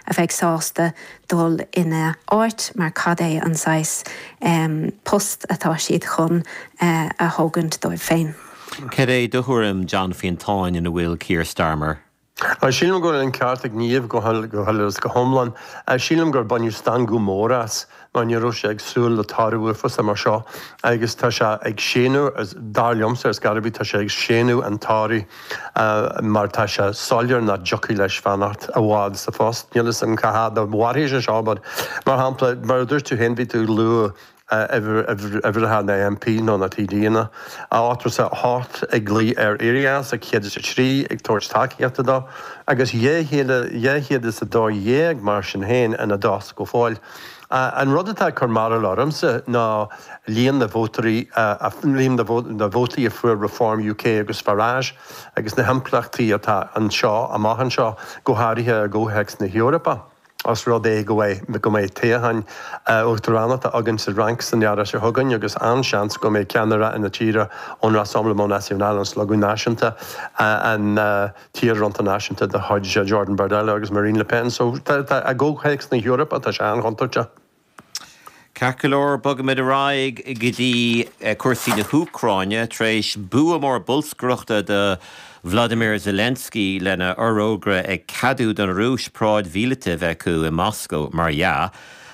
a bheidh sásta dul ina áit mar cad é an saghas post atá siad chun a thógaint dóibh féin. Cad é do thuairim, John Fiontáin, ina bhfuil Keir Starmer? Sílim go bhfuil an ceart ag Niamh go huile is go hiomlán. Sílim gur baineadh stangadh mór as mar ní raibh sé ag súil le toradh uafásach mar seo agus tá sé ag séanadh, dar liomsa, is go raibh, tá sé ag séanadh an toraidh mar tá sé soiléir nach dtiocfadh leis fanacht i bhfad sa phost. Níl 'fhios a'm cá fhad a mhairfidh sé seo but, mar shampla, mar a dúirt tú féin, bhí tú ag lua uimhreacha na MP nó na TDanna ochtó is a hocht ag glaoch air éirí as, 103, ag tabhairt tacaíochta dó agus 212 mar sin féin ina dtost go fóill. An rud atá ag cur mearbhaill ormsa ná líon na vótóirí, líon na vótaí a fuair Reform UK agus Farage agus na himpleachtaí atá anseo amach anseo, go háirithe i gcomhthéacs na hEorpa. Os rud é go mbeidh toghchán uachtaránachta againn sa Fhrainc san Earrach seo chugainn agus an-seans go mbeidh ceannaire na tíre ón Rassemblement National, an Slógadh Náisiúnta, an. Fronta Náisiúnta de chuid Jordan Bardella agus Marine Le Pen. So tá, i gcomhthéacs na hEorpa, tá sé an-chontúirteach. Ceart go leor, bogaimid ar aghaidh go dtí cúrsaí na hÚcráine. Tar éis bua mór bolscaireachta do Volodymyr Zelensky lena fhorógra ag ceadú don Rúis paráid mhíleata a bheith acu i Moscó, mar dhea,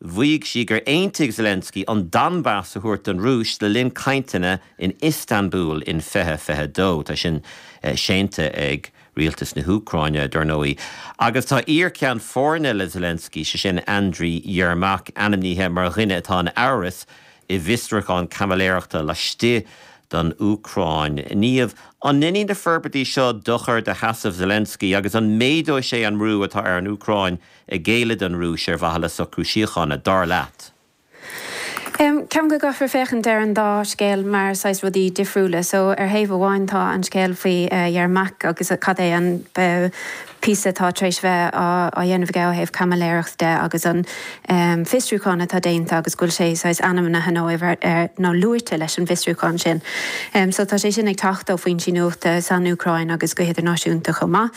Mhaígh sí gur aontaigh Zelensky an Donbas a thabhairt don Rúis le linn cainteanna in Iostanbúl in 2022. Tá sin séanta ag Rialtas na hÚcráine, dar ndóigh, agus tá iar-cheann foirne le Zelensky, sé sin Andriy Yermak, ainmnithe mar dhuine atá in amhras i bhfiosrúchán caimiléireachta laistigh den Úcráin. Niamh, an ndéanfaidh na forbairtí seo dochar do sheasamh Zelensky agus an méadóidh sé an brú atá ar an Úcráin? géilleadh don Rúis ar mhaithe le socrú síochána, dar leat? Ceapaim go gcaithfear féachaint ar an dá scéal mar saghas rudaí difriúla. So, ar thaobh amháin tá an scéal faoi Yermak agus cad é an píosa atá tar éis bheith á dhéanamh aige ó thaobh caimiléireacht de agus an fiosrúchán atá déanta agus go bhfuil sé saghas ainmnithe nó amhail nó luaite leis an bhfiosrúchán sin. So, tá sé sin ag teacht ó foinsí nuachta san Úcráin agus go hidirnáisiúnta chomh maith.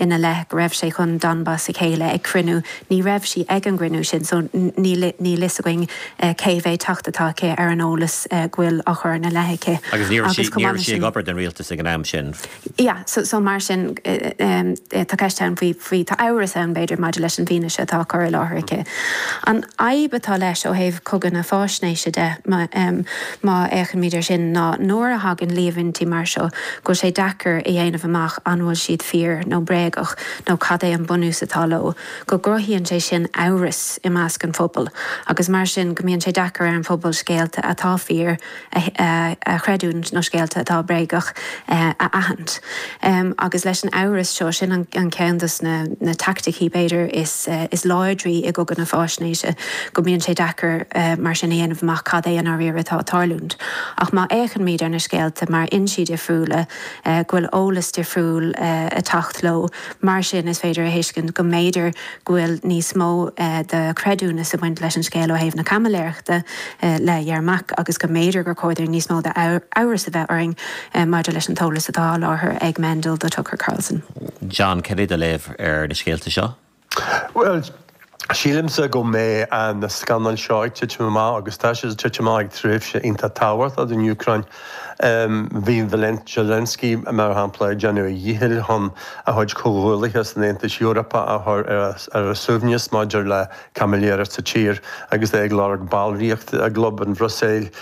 ina leith go raibh sé chun Donbas a ghéilleadh ag cruinniú. Ní raibh sí ag an gcruinniú sin so níl fhios againn cé mhéid teacht atá aici ar an eolas go bhfuil á chur ina leith aici. Agus ní raibh sí ag obair don rialtas ag an am sin. Yeah, so mar sin tá ceist ann faoi, tá amhras ann b'fhéidir maidir leis an bhfianaise atá á cur i láthair aici. An fhadhb atá leis ó thaobh chogadh na fáisnéise de, má fhéachaimid air sin, ná nuair a thagann líomhaintí mar seo, go bhfuil sé deacair a dhéanamh amach an bhfuil siad fíor nó bréagach nó cad é an bunús atá leo, go gcruthaíonn sé sin amhras i measc an phobail agus mar sin go mbíonn sé deacair ar an phobal scéalta atá fíor a chreidiúint nó scéalta atá bréagach a aithint. Agus leis an amhras seo, sin an ceann de na teaicticí, b'fhéidir, is láidre i gcogadh na faisnéise, go mbíonn sé deacair mar sin a dhéanamh amach cad é i ndáiríre atá ag tarlúint. Ach má fhéachaimid ar na scéalta ó fhoinsí difriúla, go bhfuil eolas difriúil ag teacht leo, mar sin is féidir a thuiscint go mb'fhéidir go bhfuil níos mó de chreidiúnas ag baint leis an scéal ó thaobh na caimiléireachta le Yermak agus go mb'fhéidir gur chóir dúinn níos mó d'amhras a bheith orainn maidir leis an t-eolas atá á sholáthar ag Mendel do Tucker Carlson. John, Cad é do léamh ar na scéalta seo? Bhuel, sílimse go mbeidh na scannail seo ag titim amach agus tá siad ag titim amach ag tréimhse iontach tábhachtach don Úcráin. Bhí Zelensky, mar shampla, ag déanamh a dhíchill chun a chuid comhghuallaithe san Aontas Eorpach a chur ar a suaimhneas maidir le caimiléireacht sa tír agus é ag lorg ballraíochta i gclub an Bhruiséil.